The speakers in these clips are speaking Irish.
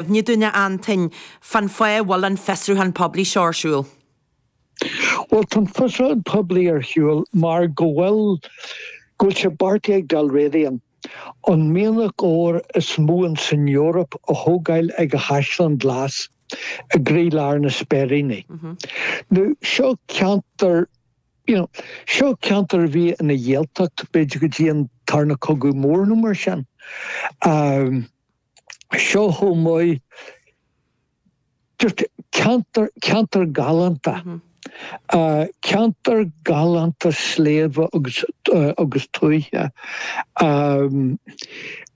Inis dúinn, Anton, cén fáth a bhfuil an fiosrúchán poiblí seo ar siúl? Bhuel, tá an fiosrúchán poiblí ar shiúl mar go bhfuil, go bhfuil sé beartaithe ag Dalradian an mianach óir is mó in san Eoraip a thógáil ag an Chaisleán Glas i gcroí lár na Speiríní. Nó, seo ceantar, you know, seo ceantar a bhí ina Ghaeltacht b'fhéidir go dtí an tarna cogadh mór nó mar sin. seo chomh maith, just ceantar, ceantar galánta, ceantar galánta sléibhe agus, agus tuaithe.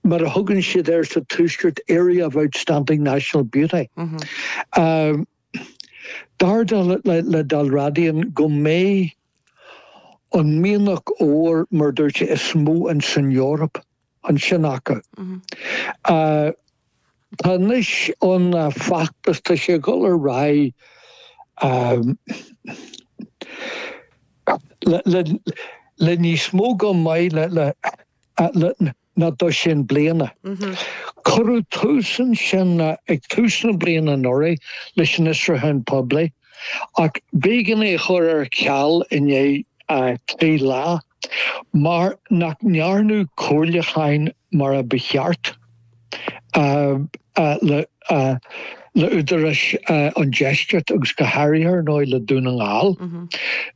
Mar a thugann siad air sa Tuaisceart, area of outstanding national beauty. Dar le, le, le Dalradian go mbeidh an mianach óir, mar a dúirt sé, is mó ins an Eoraip. ansin acu. Tá anois an feachtas, tá sé ag dhul ar aghaidh le níos mó go maith le ná dosaen bliana. Cuireadh tús ansin ag tús na bliana anuraidh leis an fhiosrúchán poiblí ach b'éigean é a chur ar ceal i ndiaidh trí lá. Mar nach ndearnadh comhairliúcháin mar a ba cheart le Údaráis an Deiscirt agus go háirithe ar ndóigh le Dún na nGall,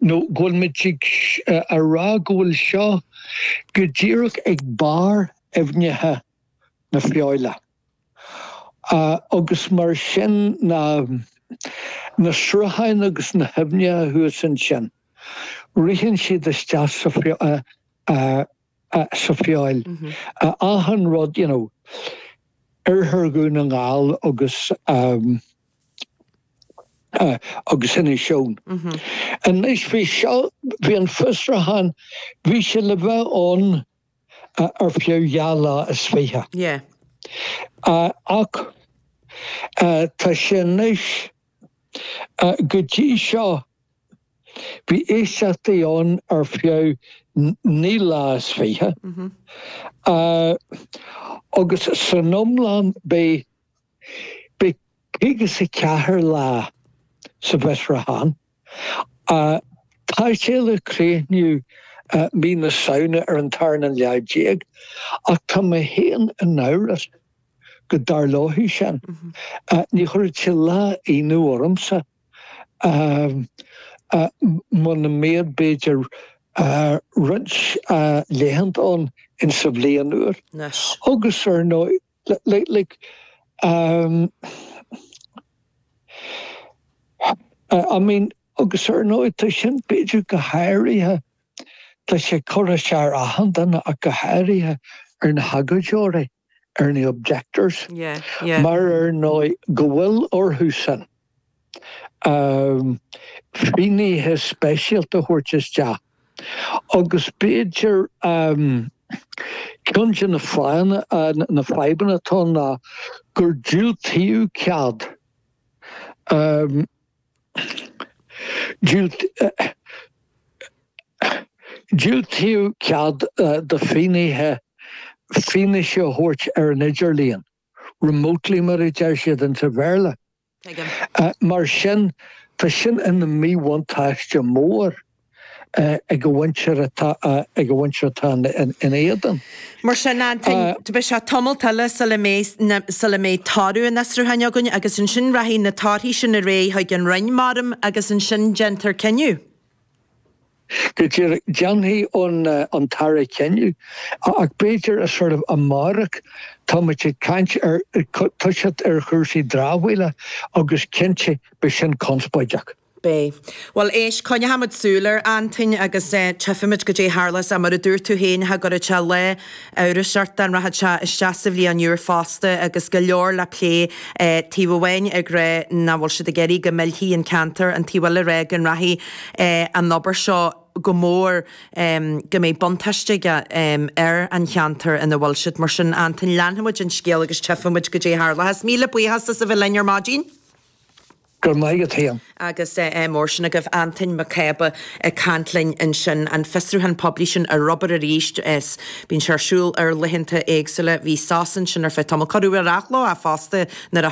nó go bhfuil muid ag rá go bhfuil seo go díreach ag barr aibhneacha na Feabhaile. Agus mar sin na na srutháin agus na haibhneacha thuas ansin, ritheann siad isteach sa sa Feabhal. Achan rud, you know, Oirthear Dhún na nGall agus agus Inis Eoghain. Anois bhí seo, bhí an fiosrúchán, bhí sé le bheith ann, ar feadh dhá lá is fiche. Yeah. Ach tá sé anois. Go dtí seo, bhí éisteachtaí ann ar feadh naoi lá is fiche. Agus san iomlán, beidh. Beidh caoga is a ceathair lá sa bhfiosrúchán. Tá sé le críochnú mí na Samhna ar an tarna lá déag ach tá mé féin in amhras go dtarlóidh sin. Ní chuirfeadh sé lá ionadh ormsa muna mbeadh b'fhéidir roinnt laethanta ann insa bhliain úr. Anois. Agus ar ndóigh. Agus ar ndóigh tá sin b'fhéidir go háirithe, tá sé curtha siar ar achan duine ach go háirithe ar na hagóideoirí, ar na objectors mar ar ndóigh go bhfuil orthusan. finnéithe speisialta a thabhairt isteach agus b'fhéidir ceann de na fadhbanna atá ná gur diúltaíodh cead diúltaíodh cead do finnéithe fianaise a thabhairt ar an idirlíon. remotely mar a deir siad insa Bhéarla. Mar sin, tá sin ina míbhuntáiste mór ag an mhuintir atá ag an mhuintir atá ina éadan. Mar sin, Antain, beidh sé tamall eile sula mbeidh na, sula mbeidh toradh an fhiosrúcháin againn agus ansin rachaidh na torthaí sin ar aghaidh chuig an Roinn, measaim, agus ansin déanfar cinneadh. Go díreach déanfaidh an tAire cinneadh ach b'fhéidir as ord amárach. Tá muid ag caint ar toiseacht ar chúrsaí dramhaíola agus cinnte beidh sin conspóideach. Beidh. Bhuel éist, coinneochaidh muid súil air Antain agus eh, tífidh muid goidé a tharlós, mar a dúirt tú féin, cha gcuirfead sé lá, iontais ort dá rachadh sé isteach sa bhliain úr fosta agus go leor le plé taobh amháin ag rá nach bhfuil siad ag iarraidh go millfí an ceantar an taobh eile ag rá go rachaidh an obair seo go mór go mbeidh buntáiste aige ar an cheantar ina bhfuil siad. Mar sin Antain leanfaidh muid an scéal agus tífidh muid goidé a tharlóchas. Míle buíochas as a bheith linn ar maidin. Go raibh maith agat féin. Agus eh mar sin agaibh, Antain Mac Cába ag caint linn ansin. An fiosrúchán poiblí sin ar obair arís. Bíonn sé ar siúl ar laethanta éagsúla. Bhí sos ansin ar feadh tamaill. Cuireadh ar athló é fosta nuair a.